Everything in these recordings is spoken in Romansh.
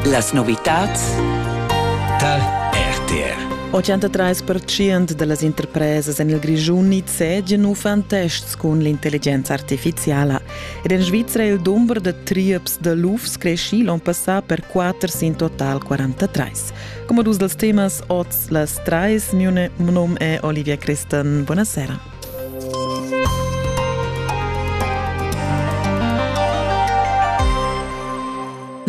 Las novitads tar RTR 83% da las interpresas en il Grischun nizzegian uffant tests cun l'intelligenza artifiziala. Ed en Svizra il dumber da trieps da lufs creschì l'onn passà per 4 sin total 43. Come dus dels temas oz las trais, mune nom è Olivia Christen. Buonasera.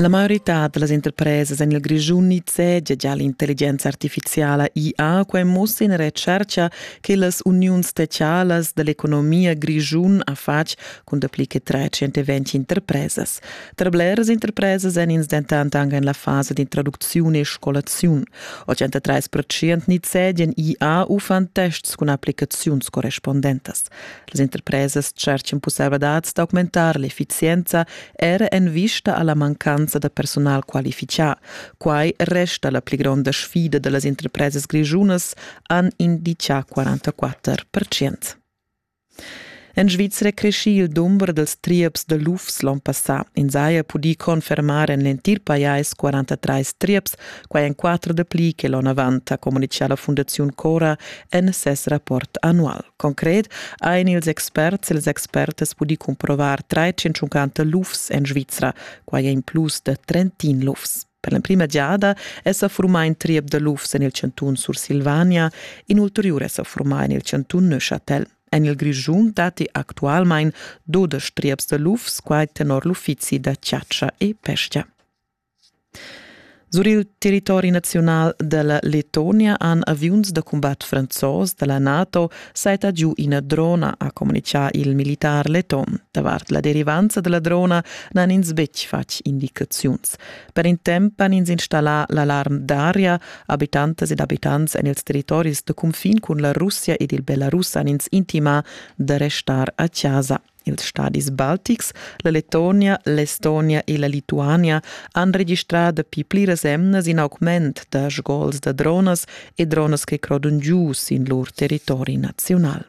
La maiorità da las interpresas en il Grischun nizzegia già l'intelligenza artifiziala IA quai mussa in recerca che las uniuns specialas da l'economia grischun ha fatg cun dapli che 320 interpresas. Tra bleras interpresas èn ins dentant anche en la fasa d'introducziun e scolaziun. 83% nizzedian IA uffant tests cun applicaziuns correspondentas. Las interpresas tschertgan pussaivladads d'augmentar l'effizienza era en vista alla mancanza da personal qualifichà. Quai resta la pli gronda sfida da las interpresas grischunas, han indicà 44%. En Svizra è creschì il dumber dals trieps da lufs l'onn passà. Ins haja pudì confermar en l'entir pajais 43 trieps, quai en quatter dapli che l'onn avant, ha communitgà la Fundaziun Cora en ses rapport annual. Concret han ils experts e les expertes pudì cumprovar 350 lufs en Svizra, quai è in plus da 30 lufs. Per l'emprima giada è sa formà in triep da lufs en il chantun Sursilvania, in ulteriur è sa formà en il chantun Neuchâtel. En il Grischun datti actualmain dudesch trieps da lufs, quai tenor l'uffizi da chatscha e pesca. Sur il territori nazional della Letonia han aviuns da combat franzos della NATO saita giu ina drona, ha comunichà il militar leton. Davart la derivanza della drona n'han ins betg fatg indicaziuns. Per in temp han ins installà l'alarm d'aria. Abitantas ed abitants en ils territoris da cunfin cun la Russia ed il Belarus han ins intimà da restar a chasa. Ils stadis baltics, la Letonia, l'Estonia e la Lituania han registrà dapi pliras emnas in augment da sgols da dronas e dronas che crodon giu sin lur territori naziunal.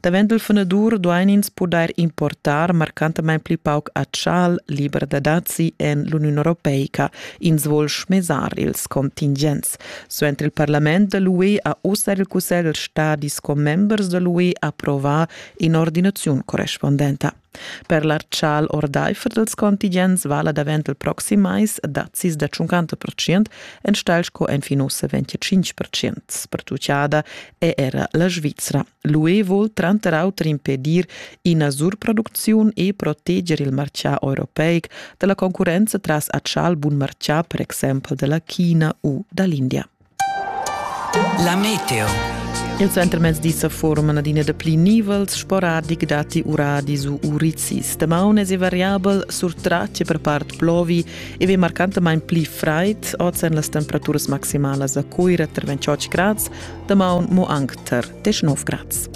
Davent dal fanadur duain ins pudair importar marcantamain pli pauc atschal liber da dazi en l'Uniun europeica. Ins vul schmesar ils contingents. Suenter il parlament da l'UE ha ussa il cussegl stadis commembers da l'UE approvà in'ordinaziun correspondenta. Per l'artschal ordaifer dals contingents vala davent il proxim mais dazis da 50% enstagl sco enfin ussa 25%. Pertucciada è era la Svizra. L'UE vul tranter auter impedir ina surproducziun e proteger il martgà europeic da la concurrenza tras atschal bun martgà, per exempel da la China u da l'India. La meteo. Il centrmezdi sa forman adina dapli nivels sporadic datti uradis u urizis. Damaun è variabel sur tratge per part plovi e ve marcantamain pli fraid, oz èn las temperaturas maximalas a Cuira tra 28 grads, damaun mo anc tar 19 grads.